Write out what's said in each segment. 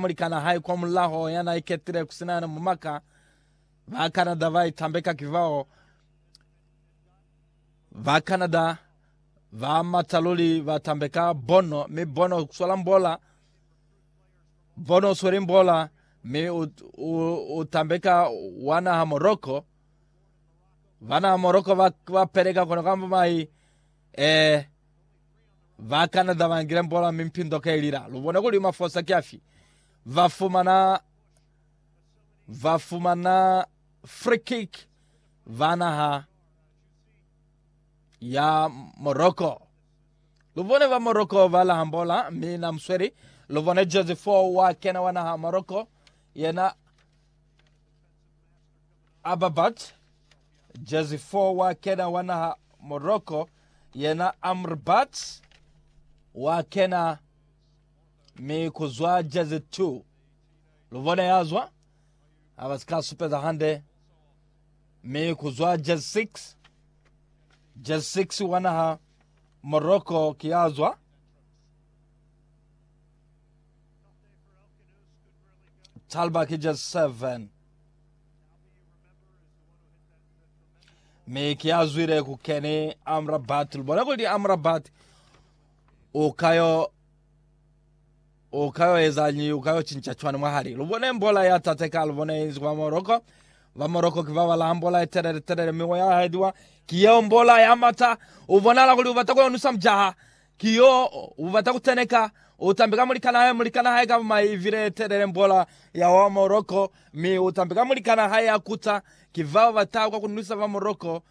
Mulikan'a hae kwa mulaho ya n'a iketile ku si na yena mumaka, ba Canada ba itambeka ki bao ba Canada ba mata luli ba tambeka Bono, mi Bono ku swala mbola. Bono u sweli mbola mi u, u, u tambeka wa naha Morocco. Ba naha Morocco ba, ba peleka kona kamba mai eh, Ba Canada ba ngile mbola mi mpindo ka ilila. Lu bone kuli mafosa ki afi. Ba fumana ba fumana free kick ba naha ya Morocco. Lu bone ba Morocco ba laha mbola mi na musweli. Lu bone Jose 4 wa kena wa naha Morocco yena Ababat, jezi 4 wa kena wa naha Morocco, yena Amrabat wa kena mi ku zwa jezi 2 lu bona ya zwa ha ba si ka supeza hande mi ku zwa jezi 6 jezi 6 wa naha Morocco ki ya zwa Talba ki jezi 7 mi ki azwile ku keni amrabat lubona kuli amrabat o kayo o kayo ezanyi o kayo chincha chwani mwahali lubone mbola ya tateka lubone inzi kwa moroko ba moroko ki ba bala mbola ya telele telele mi ya hediwa ki yo mbola ya mata u bonala kuli u bata ku yonusa mjaha Ki yo ubata kuteneka, utambi ka mulikana hae, mulikana hae ka maivili etelele, mbola ya wa Morocco, mi utambi ka mulikana hae ya kuta. Ki fa ubata kwa kunwisa ba Morocco.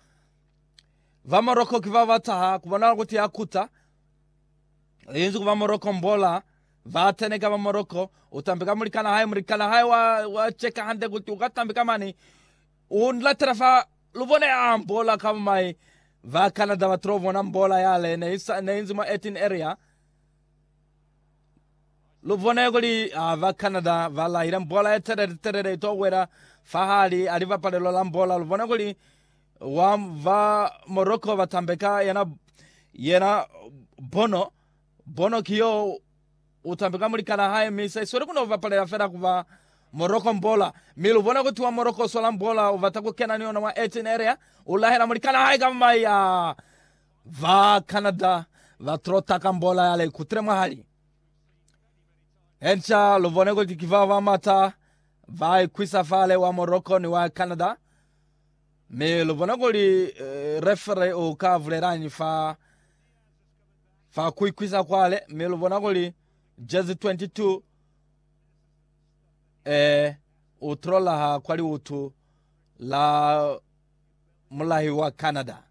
Ba Morocco ki ba bataha kubonala kuti ya kuta. Inzi ku ba Morocco mbola, ba teneka ba Morocco, utambi ka mulikana hae, mulikana hae wa, wa cheka hande kuti uka tambi ka mani. U nratela fa lu bona ya ambola ka bumai ba Canada ba tilo bona mbola yale ne isa ne inzi mwa 18 area. Lu bone kuli ha ba Canada ba lahile mbola ye telele telele ito wela fahali ha libapalelo la mbola. Lu bone kuli wa ba Morocco ba tambeka yena yena Bono. Bono ki yo. U tambi ka mulikana hae mi sa isweli ku no bapalela fela ku ba Morocco Mbola. Mi lu bona kutiwa Morocco swa la Mbola u bata ku kena ni yona mwa 18 area. U lahela mulikana hae ka mai ya ba Canada ba Trotter ka Mbola ya la ikutile mwahali. Enca lu bone kuli ki bao ba mata ba ikwisa fale wa Morocco ni wa Canada. Mi lu bone kuli eh, referee u ka bulelañi fa fa kuikwisa kwale mi lubona kuli jezi 22 eh u trolaha kwa liutu la mulahi wa Canada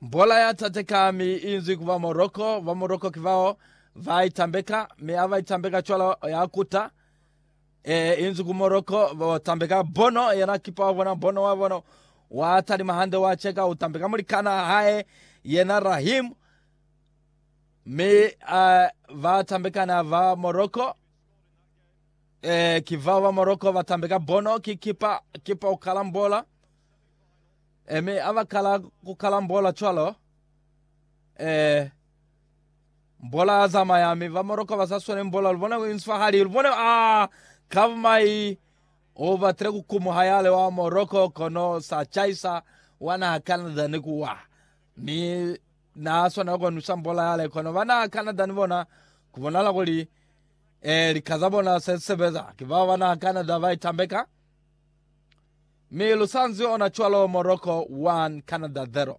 bola ya tateka mi inzwi kuba Morocco ba Morocco kivao va itambeka mi ava itambeka cwalo ya kuta E, inzu ku Morocco, ba ba tambeka bono, yena kipa wa bona, bono wa bona, wa talima hande, wa cheka, u tambeka mulikana hae, yena Rahim, mi a ba tambekana ba Morocco, e, ki vao ba Morocco ba tambeka bono, ki kipa, kipa u kalambola, e, mi a ba kala ku kalambola cwalo, e, Mbola a zamaya, mi ba moroka ba sa swale mbola. Lu bona ku inswa hali lu bone a kaba mai. U batile ku kumuha yale wa moroko, kono sa chaisa wa naha Canada ni ku wa. Mi na swanela ku nwisa mbola yale. Kono ba naha Canada ni bona ku bonala kuli, eh, lika za bona se sebeza. Ki bao ba naha Canada ba itambeka. Mi lu sa nzi ona cwalo, moroko 1, Canada 0.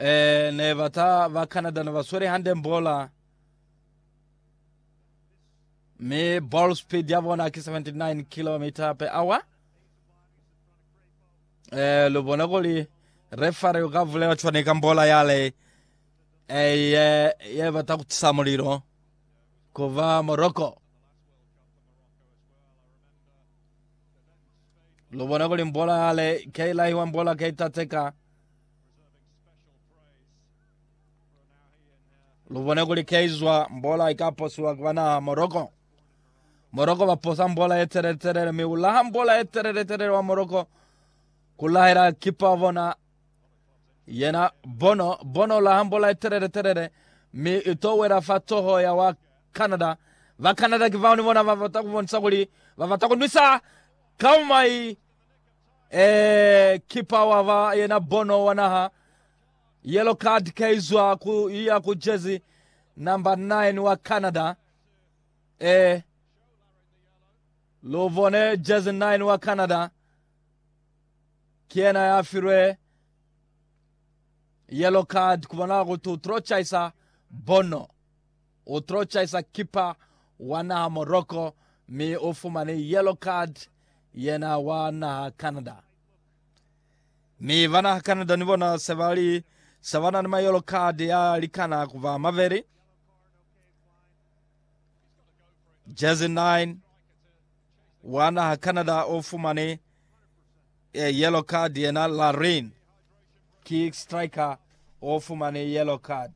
Eh, ne bata ba Canada ne ba swele hande mbola. Mi ball speed ya bona ki 79 km per hour. Eh, lo bona kuli refare ka vulela tshwane ka mbola yale. Eh, ye, ye bata kutisa mulilo. Kuva Morocco. Lubona kuli mbola yale keilahiwa mbola keitateka. Lubona kuli keizwa mbola ikaposiwa kubanaha Morocco. Morocco baposa mbola yetelele telele mi ulaha mbola yetelele telele wa Morocco kulahela kipa bona Yena bono, bono la hambo la telele telele, mi ito wela fa toho ya wa Canada. Ba Canada ki bao ni bona ba bata kubonisa kuli ba bata kunwisa kaumai eh, kipa wa ba yena bono wa naha yellow card kaizwa ku iya ku jersey number 9 wa Canada eh luvone jersey 9 wa Canada Ki yena ya filwe yellow card kubonala kuti u tlo chaisa Bono. U tlo chaisa kipa wa naha Morocco mi u fumani yellow card yena wa naha Canada. Mi ba naha Canada ni bona se ba li se ba na ni ma yellow card ya likana kuba mabeli. Jersey 9 wa naha Canada o fumane eh, yellow card yena Larin ki striker o fumane yellow card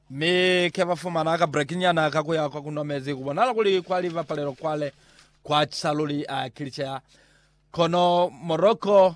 mi ke ba fumana ka break nyana ka kuya kwa kunwa mezi ku bonala kuli kwa li bapalelo kwale kwa chisaluli a kilichea kono Morocco